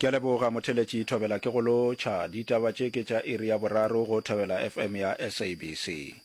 Ke a leboga Motheletši Thobela ke go lotšha. Ditaba tše ke tša iri ya boraro go Thobela FM ya SABC.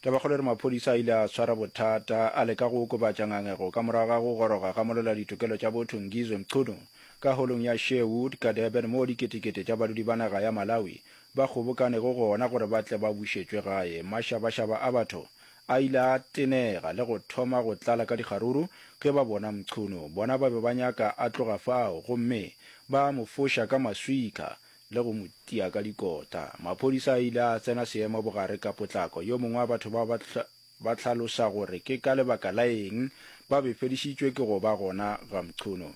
Tabakgolo e re maphodisa a ile a swara bothata a leka go okobatša ngangego ka morago ga go goroga ga molola ditokelo tša botho Ngizwe Mchunu ka holong ya Sherwood ka Durban moo diketekete tša badudi ba naga ya Malawi ba kgobokanego gona gore ba tle ba bušetšwe gae. Mašabašaba a batho A ile a tenega le go thoma go tlala ka dikgaruru ge ba bona Mchunu. Bona ba be ba nyaka a tloga fao gomme ba mo foša ka maswika le go mo tia ka dikota. Maphodisa a ile a tsena seemo bogare ka potlako. Yo mongwe wa batho bao ba hlalosa gore ke ka lebaka la eng ba befedišitšwe ke go ba gona ga Mchunu.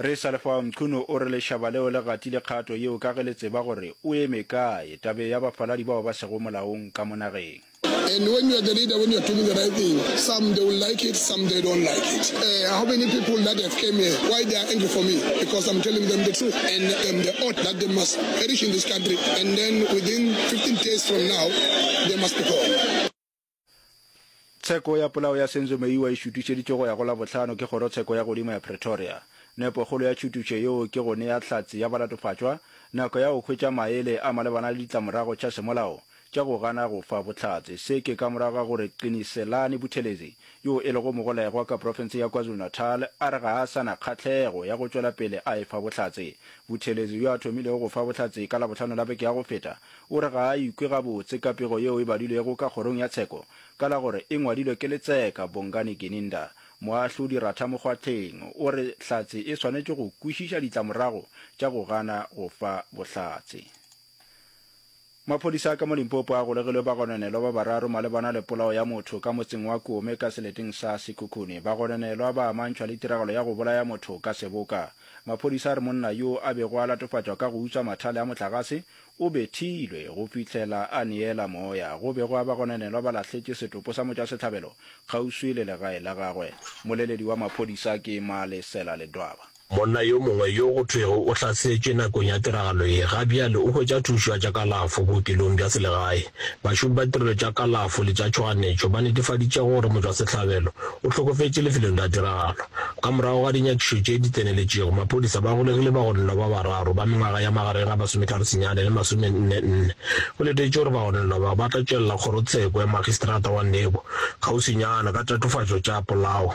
Re sa le fao, Mchunu o re lešaba leo le gatile kgato yeo ka ge le tseba gore o eme kae tabeng ya bafaladi bao ba sego molaong ka mo nageng. And when you are the leader, when you are doing the right thing, some they will like it, some they don't like it. Uh, how many people that have came here, why they are angry for me? Because I'm telling them the truth and um, the oath that they must perish in this country. And then within 15 days from now, they must be gone. Tsheko ya polao ya Senzo Meyiwa e šutišeditšwe go ya go Labohlano ke Kgorotsheko ya Godimo ya Pretoria. Nepokgolo ya tšhutišo yeo ke go nea Hlatse ya Balatofatšwa nako ya go hwetša maele a malebana le ditlamorago tša semolao tša go gana go fa bohlatse. Se ke ka morago ga gore Qiniselani Buthelezi, yo e lego mogolegwa ka profense ya KwaZulu-Natal, a re ga a sa na kgahlego ya go tšwela pele a e fa bohlatse. Buthelezi, yo a thomilego go fa bohlatse ka Labohlano la beke ya go feta, O re ga a ikwe gabotse ka pego yeo e badilwego ka kgorong ya tsheko ka la gore e ngwadilwe ke letseka Bongani Gininda. Moahlodi Ratha Mokgwatlheng o re Hlatse e swanetše go kwešiša ditlamorago tša go gana go fa bohlatse. Maphodisa ka mo Limpopo a golegilwe bagononelwa ba bararo malebana le polao ya motho ka motseng wa Kome ka seleteng sa Sekhukhune. Bagononelwa ba amantšhwa le tiragalo ya go bolaya motho ka seboka. Maphodisa a re monna yo a bego a latofatšwa ka go utswa mathale a motlagase O bethilwe go fihlela a neela moya. Go be gwa ba gonanelwa ba lahletše setopo sa motšwasehlabelo kgauswi le legae la gagwe. Moleledi wa maphodisa ke Malesela Ledwaba. Monna yo mongwe yo go thwego o hlasetšwe nakong ya tiragalo ye ga bjale o hwetša thušo ya tša kalafo bookelong bja selegae. Bašomi ba ditirelo tša kalafo le tša tšhoganetšo ba netefaditše gore motšwasehlabelo o hlokofetše lefelong la tiragalo. Ka morago ga dinyakišo tše di tseneletšego, maphodisa ba golegile bagononelwa ba bararo ba mengwaga ya magareng ga masometharo senyane le masome nne nne. Go letetšwe gore bagononelwa bao ba tla tšwelela kgorotsheko ya Magistrata wa Nebo kgauswinyana ka tatofatšo tša polao.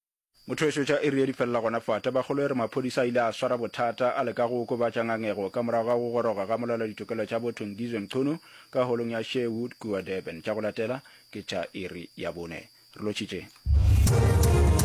Motho yo šotša iri ye di felela gona fa. Tabakgolo e re maphodisa a ile a swara bothata a leka go okobatša ngangego ka morago ga go goroga ga molaoladitokelo tša botho Ngizwe Mchunu ka holong ya Sherwood kua Durban. Tša go latela ke tša iri ya bone. Re lotšhitše.